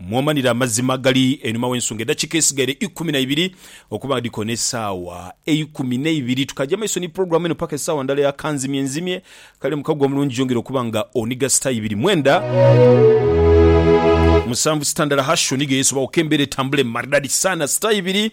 Mwomanire amazima agali einhuma w'ensonga. Edhakiika edhisigaire ikumi na ibiri okuba nga dhikoona esaawa eikumi n'eibiri, tukaagya mu maiso ni pulogulaamu eno paka esaawa ndala ya kanzimye nzimye. Kale Mukago omulungi yongera okuba nga oniga sita ibiri mwenda musanvu sita ndala hash oniga yeesobaghoku embeera etambule maridadi saana sita ibiri.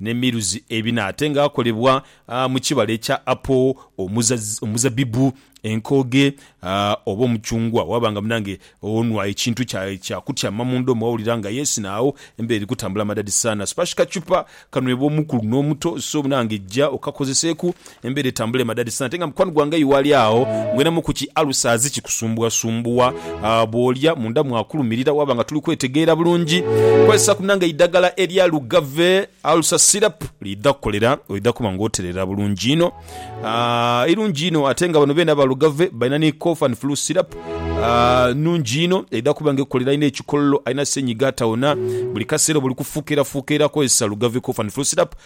N'emiruzi ebina ate nga akolebwa mu kibala ekya apo, omuzabibu, enkooge, oba omucungwa. Waaba nga munange onwa ekintu kya kutyama mu ndhomo wawulira nga yes na agho embeera eri kutambula madadi sana. Spash kachupa kanwebwa omukulu n'omuto so munange ja okakozeseeku Embera etambule madadi sana ate nga mukwano gwange aye wali agho ngwenamu ku ki ulcers kikusumbuwa sumbuwa bwolya munda mwakulumirira waba nga tuli kwetegeera bulungi kozesa ku nange eidagala erya lugave ulcer syrup lidha kukolera oidha kuba nga oterera bulungi inho eirungi inho ate nga bano beena ba lugave balina ni cough and flu syrup nungi inho eidha kuba nga ekukolera alina ekikololo alina senyiga atawona buli kaseera oba oli kufukeera fukeera kozesa lugave cough and flu syrup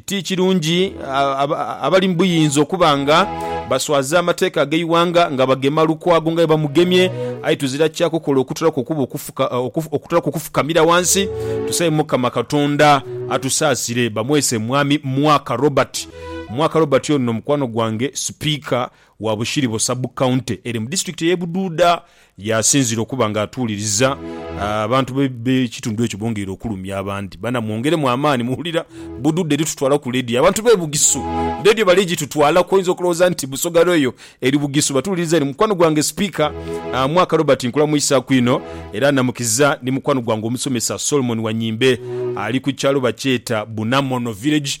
Ti kirungi abali mu buyinza okuba nga baswaza amateeka ag'eighanga nga bagema Lukwago nga bwe bamugemye, aye tuzira kya kukola okutolaku okuba okutolaku okufukamira ghansi tusabe Mukama Katonda atusaasire. Bamwese Mwami Mwaka Robert. Mwaka Robert ono mukwano gwange sipiika wa Bushiribo Sub County eri mu disitulikiti ey'e Bududa y'asinziire okuba nga atuuliriza abantu b'ekitundu ekyo bongeire okulumya abandi bana mwongeremu amaani muwulira Bududa eritutwala ku leediyo abantu b'e Bugisu leediyo bali gitutwalaku oyinza okulowooza nti Busoga Royal eri Bugisu batuwuliriza eno mukwano gwange Sipiika Mwaka Robert nkulamwisaaku inho era namukiza ni mukwano gwange omusomesa Solomon Wanyimbe ali ku kyalo bakyeta Bunamono Village